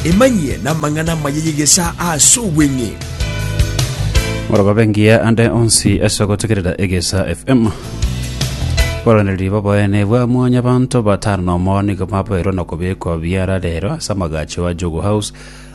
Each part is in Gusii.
Emanyie namang'ana amaya y'egesaa ase obweng'e. Morogobe ngiya ande onsi ase ogotegerera egesa FM. Boranereria boboene bwa mwanyabanto batano na omo nigo baboirwe na kobekwa biara rero ase amagacho a Jogo House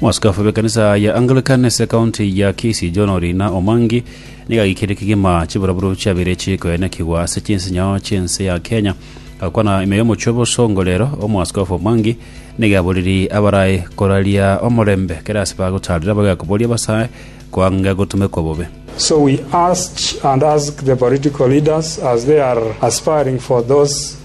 Mwaskofu b'ekanisa ya Anglican ase ekaunti ya Kisii John Orina Omwangi nigo agaikirie kegima chiburaburo chiabere chikoenekigwa ase chinsinyao chi'ense ya Kenya agakwana ime y'omochie obosongo rero omwaskofu Omwangi nigo aboririe abarae koraria omorembe kera ase bagotarire abagae koboria abasae koanga gotumekwa bobe So we urge and ask the political leaders as they are aspiring for those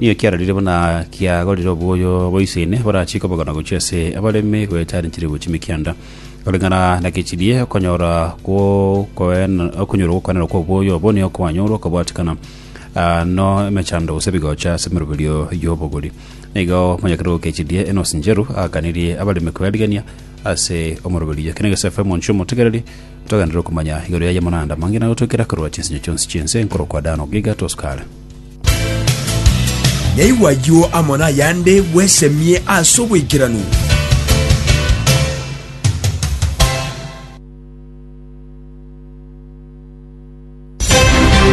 Nigo kiarorire buna kiagorire oboyo bwa ise ene borachie kobogana gochia ase abaremi goetaneteria gochia mikianda, koreng'ana na gechirie okonyora gwokoena- okonyora gwokoenana kw'oboyo obo nigo kwanyorwa okobwatikana ah, no emechando gose ebigocha ase emeroberio y'obogori. Nigo monyakere gokechirie enosi ncheru aakanirie abaremi koerigania ase omoroberio. Eke negesae efe omonche omotegereri, togenderere okomanya igoro y'ayamo naende amang'ina, gotoikera korwa chinsinyo chionsi chi'ense nkorokwa Dan ogiga tosuka are. Nyaigwe ayio amo nayande bwesemie ase oboikeranu.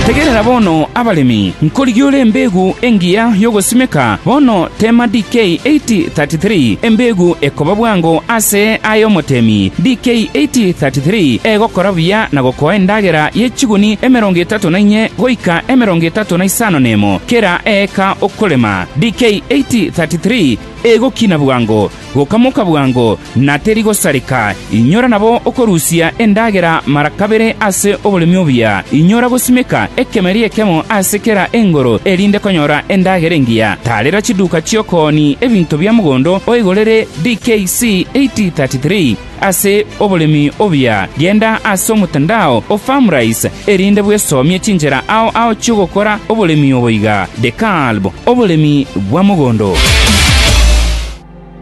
Tegerera bono, abaremi, nkorigia ore embeegu engiya y'ogosimeka bono teema DK 8033, embeegu ekoba bwango ase aye omoteemi, DK 8033, egokora buya na gokoa endagera ye chiguni emerongo etato etato na inye goika emerongo etato na isano nemo kera eeka okorema, DK 8:33 Egokina bwango, gokamoka bwango, na teri gosareka, inyora nabo okorusia endagera mara kabere ase oboremi obuya, inyora gosimeka ekemeri ekemo ase kera engoro erinde konyora endagera engiya, tarera chiduka chi'okooni ebinto bia mogondo oigorere, DK C 8:33. Ase oboremi obuya, genda ase omotandao o Farmrise, erinde bwesomie chinchera ao ao chi'ogokora oboremi obo iga, The Kalb, Oboremi bwa Mogondo.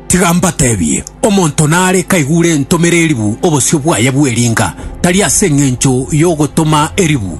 Tiga mbateebie, omonto nare kaigure ntomere eribu obosio bwaye bw'eringa, tari ase engencho y'ogotoma eribu,